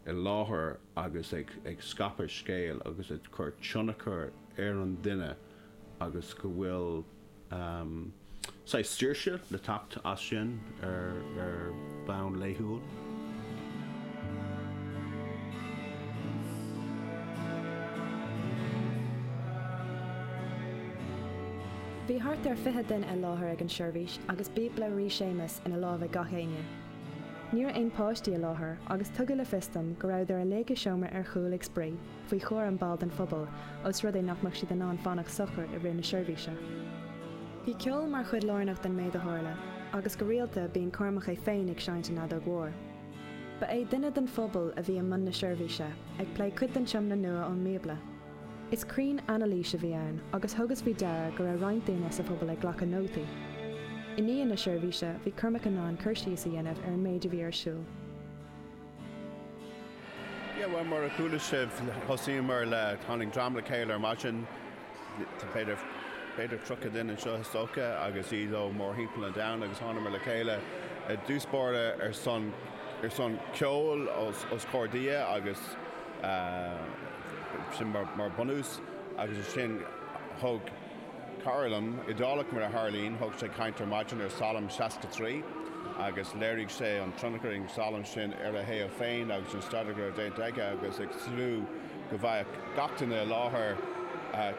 i láthair agus ag scaipeadh scéil agus ag cur tionchar ar an duine agus go bhfuil saghas saoirse le teacht as sin ar bhonn laethúil. Bhí thart ar fiche duine i láthair ag an seirbhís agus Bíobla Rí Séamas ina lámh ag gach éinne. Ní raibh aon páistí i láthair agus tugadh le fios dom go rabhadar uilig i seomra ar chúl ag spraoi, faoi chúram ball den phobal, os rud é nach mbeadh siad in ann fanacht socair i rith na seirbhíse. Bhí ceol mar chuid lárnach den méid a tharla agus go rialta bíonn Cormac é féin ag seinnt an fheadóg mhóir. Ba é duine den phobal a bhí i mbun na seirbhíse, ag plé cuid den Tiomna Nua ón mBíobla. Is cruinnanailís a bhí ann agus thugas faoi deara go raibh roinnt daoine sa phobal ag glacadh nótaí. I ndiaidh na seirbhíse, bhí Cormac in ann cur síos a dhéanamh ar an méid a bhí ar siúl. Yeah, well, mar a chuala sibh, thosaíomar le tháinig dream le chéile ar maidin, b'fhéidir 30 duine anseo is dócha agus iad ó mórthimpeall an domhain agus thánamar le chéile i dtús báire ar son ceoil os comhair Dia agus uh, sin mar bunús agus ansin thug cara liom, Iodálach, mar a tharlaíonn, thug sé caint ar maidin ar Salm 63 agus léirigh sé an tionchar a bhí ag an salm sin ar a shaol féin agus an staidéar a raibh déanta aige agus ag tnúth go bhfaigheadh gach duine i láthair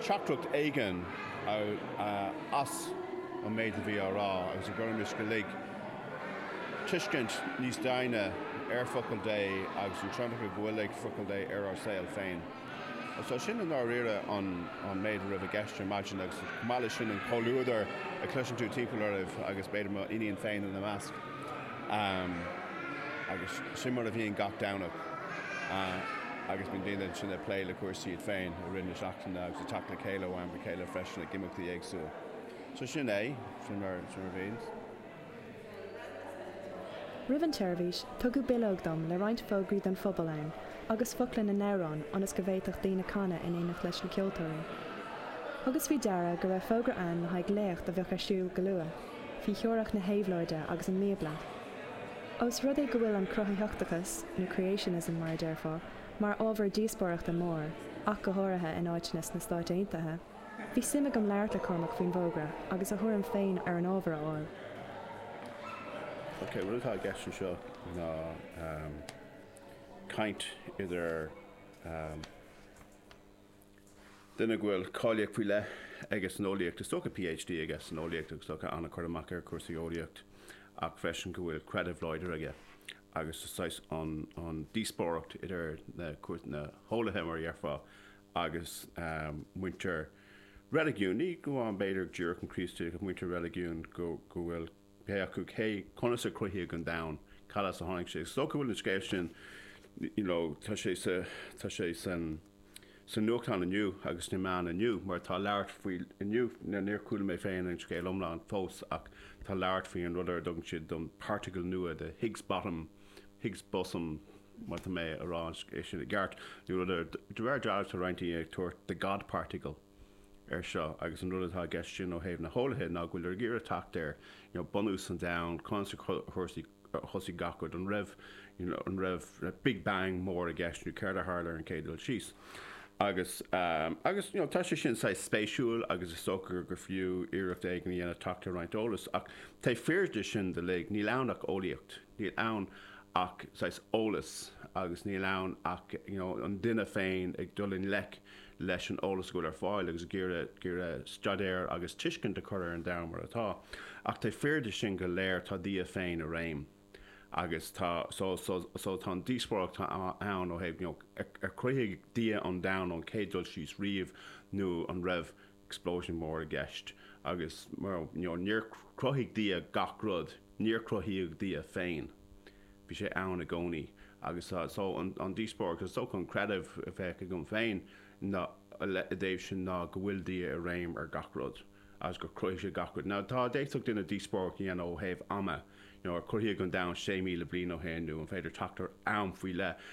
teachtaireacht éigin as an méid a bhí á rá agus go gcuirfimis uilig tuiscint níos doimhne ar Focal Dé agus an tionchar go bhfuil ag Focal Dé ar ár saol féin. So sin i ndáiríre an méid a raibh i gceist ar maidin agus chomh maith leis sin an comhluadar a chloiseann tú timpeall oraibh agus b'fhéidir mo iníon féin ina measc agus sin mar a bhíonn gach Domhnach agus bíonn daoine ansin ag plé le cúrsaí iad féin i rith na seachtaine agus ag teacht le chéile ó am go chéile freisin ag imeachtaí éagsúla. So sin é, sin mar a bhíonns. Roimh an tseirbhís, tugadh bileog dom le roinnt fógraí don phobal ann agus focla na n-amhrán ionas go bhféadfadh daoine canadh in éineacht leis na ceoltóirí. Thugas faoi deara go raibh fógra ann le haghaidh léacht a bheadh ar siúl go luath, faoi theoiric na héabhlóide agus an mBíobla. Ós rud é go bhfuil an cruthaitheachtachas, nó creationism mar a déarfá, mar ábhar díospóireachta mór, ach go háirithe in áiteanna sna Stáit Aontaithe, Bhí suim agam labhairt le Cormac faoin bhfógra agus a thuairim féin ar an ábhar a fháil. Ok, rud atá i gceist anseo ná caint idir duine go bhfuil cáilíocht faoi leith aige san eolaíocht, is dócha PhD aige san eolaíocht agus is dócha an-chur amach ar chúrsaí eolaíocht ach freisin go bhfuil creideamh láidir aige agus is saghas an díospóireacht idir na heolaithe mar a dhéarfá agus muintir reiligiúin, ní amháin b'fhéidir díreach an Chríostaíocht, ach muintir reiligiúin, go bhfuil pé acu cé conas a cruthaíodh an domhan, cad as a tháinig sé. Is dócha go bhfuil an scéal sin, you know, tá sé sa, tá sé san, sa nuachtán inniu agus sna meáin inniu mar tá labhairt faoi inniu, níor chuala mé féin an scéal iomlán fós ach tá labhairt faoi an rud ar a dtugann siad the particle nua, the Higgs Bottom, Higgs Bosom, Má tá mé a rá é sin i gceart, nó rud, ar aon dóigh, tá roinnt daoine ag tabhairt the God Particle air seo agus an rud atá i gceist sin ó thaobh na heolaithe ná go bhfuiltear ag iarraidh teacht ar bunús an domhain, conas a thosaigh gach rud, an raibh an raibh big bang mór i gceist nó céard a tharla ar an gcéad dul síos. Agus agus tá sé sin saghas spéisiúil agus is dócha gur fiú iarracht éigin a dhéanamh teacht ar roinnt eolas ach taobh thiar de sin uilig níl ann ach eolaíocht. Níl ann ach saghas eolais agus níl ann ach you know an duine féin ag dul i ngleic leis an eolas go bhfuil ar fáil agus ag iarraidh staidéar agus tuiscint a chur ar an domhan mar atá. Ach taobh thiar de sin go léir tá Dia féin i réim agus tá so so so tá an díospóireacht ann ó thaobh you know ar chruthaigh Dia an domhan ón chéad dul síos riamh nó an raibh explosion mór i gceist agus you know níor chruthaigh Dia gach rud, níor cruthaíodh Dia féin, bhí sé ann i gcónaí agus so an díospóireacht is dócha an creideamh a bheadh agam féin ina thaobh sin ná go bhfuil Dia i réim ar gach rud agus gur chruthaigh sé gach rud. Now tá a d'fhéadfadh duine díospóireacht a dhéanamh ó thaobh ama, nó ar cruthaíodh an domhan 6,000 bliain ó shin, nó an féidir teacht ar am faoi leith.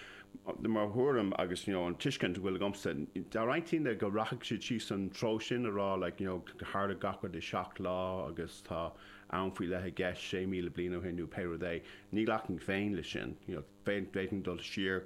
De mo thuairim agus, you know, an tuiscint a bhfuil agamsa, tá roinnt daoine go rachaidh siad síos an treo sin, a rá, like, you know, tharla gach rud i seacht lá agus tá am faoi leith i gceist, 6,000 bliain ó shin nó pé rud é. Ní ghlacfainn féin leis sin, you know, d'fhéadfainn dul siar,